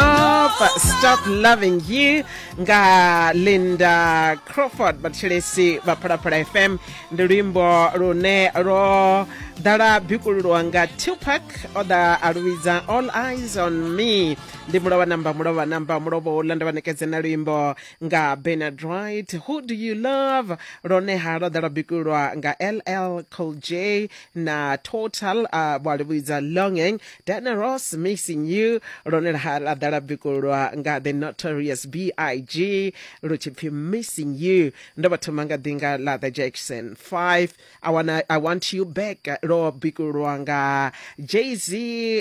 Stop, stop loving you nga linda crawford vhathelesi vha phalaphala fm ndi luimbo lune lwo ḓala bikululwa nga tupac o ḓa a luvhidza all eyes on me ndi mulovha namba mulovha namba mulovha uḽa nda vha nekedze na luimbo nga benard right who do you love lone ha lwo ḓala bikululwa nga ll col j na total uh, vha luvhidza longing Diana Ross missing you lone laha la ḓa la bikulwa nga the notorious big lu tshi pfi missing you ndo vha thoma nga ḓi nga ḽa the jackson 5 I, wanna, i want you back lwo bikulwa nga jz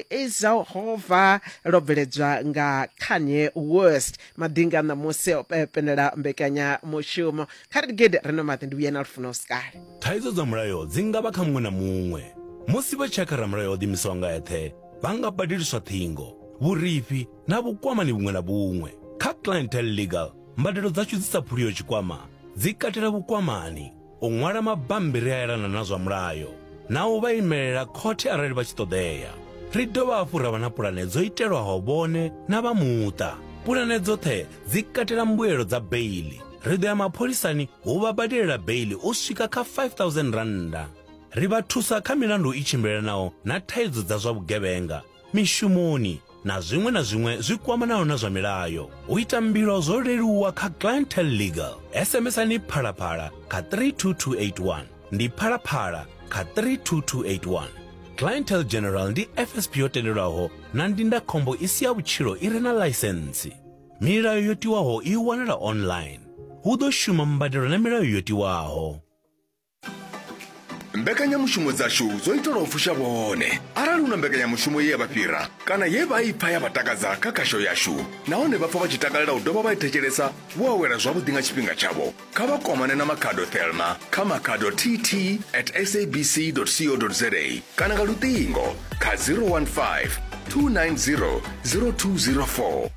izahova lwo bveledzwa nga kanye worst madinga ṋamusi o pe- penela mbekanyamushumo kha ri gede ri no maḓi ndi vhuyena lufuno sikale Thaidzo dza mulayo dzi nga vha kha muṅwe na muṅwe. Musi vha tshi ya kha ramulayo o ḓiimisaho nga eṱhe, vha nga badeliswa ṱhingo, vhurifhi na vhukwamani vhuṅwe na vhuṅwe. Kha Clientele Legal, mbadelo dzashu dzi sa phuliho tshikwama dzi katela vhukwamani, u ṅwala mabammbiri a elana na zwa mulayo na u vha imelela khothe arali vha tshi ṱoḓea. Ri dovha hafhu ra vha na pulane dzo itelwaho vhone na vha muṱa. Pulane dzoṱhe dzi katela mbuelo dza beili ri ḓo ya mapholisani hu vha badelela beili u swika kha 5000 rannda ri vha thusa kha milandu i tshimbilelanaho na thaidzo dza zwa vhugevhenga mishumoni na zwiṅwe na zwiṅwe zwi kwamanaho na zwa milayo u ita mbilo zwo leluwa kha clientel legal sms-ani phalaphala kha 32281 ndi phalaphala kha 32281 clientel general ndi fsp yo tendelwaho na ndindakhombo i si ya vhutshilo i re na ḽaisentsi Milayo yo tiwaho i wanala online. Hu ḓo shuma mbadelo na milayo yo tiwaho. mbekanyamushumo dzashu dzo itelwa u fusha vhone arali hu na mbekanyamushumo ye ya vha fhira kana ye vha i pfa ya vha takadza kha khasho yashu nahone vha pfa vha tshi takalela u dovha vha i thetshelesa vho awela zwavhuḓi nga tshifhinga tshavho kha vha kwamane na makhado thelma kha makhado tt at sabc co za kana nga luṱingo kha 015 290 0204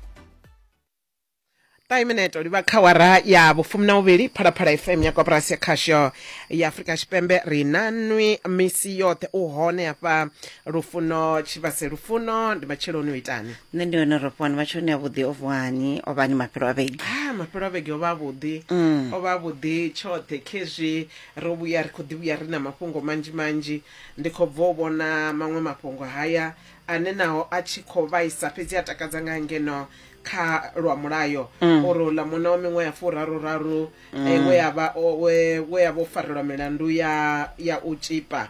5 minute livha kha wara ya vhufumi na vhuvhili phalaphala fm ya koporasi ya khasho ya afurika tshipembe ri na nwi misi yoṱhe u hone hafha lufuno tshivhase lufuno ndi matsheloni u itani nṋe ndi hone ro fhani matsheloni avhuḓi o vuhani o vhani mafhelo a vhege ah mafhelo a vhege o vha avhuḓi mm. o vha avhuḓi tshoṱhe khezwi ro vhuya ri khou ḓi vhuya ri na mafhungo manzhi manzhi ndi khou bva u vhona maṅwe mafhungo haya ane naho a tshi khou vhaisa fhedzi a takadza nga ngeno kha lwa mulayo mm. uri uḽa muna wa miṅwe ya furaru raru eh, mm. we ya vha o farelwa milandu ya ya u tshipa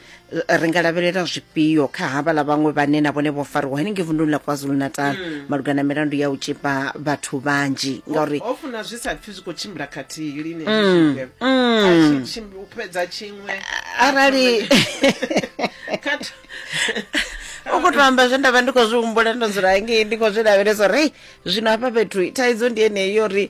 Eh, ri nga lavhelela zwifhio kha havha ḽa vhaṅwe vhane na vhone vho fariwa henengei vunduni ḽa kwazulu natal mm. malugana na milandu ya u tshipa vhathu vhanzhi ngauri ho funa zwi sa pfhi zwi khou tshimbila khathihi lini mm. mm. u fhedza tshiṅwe arali u khou to amba zwe nda vha ndi khou zwi humbula ndo dzula ngei ndi khou zwi lavhelesa uri zwino hafha fhethu thaidzo ndi yeneyi yo ri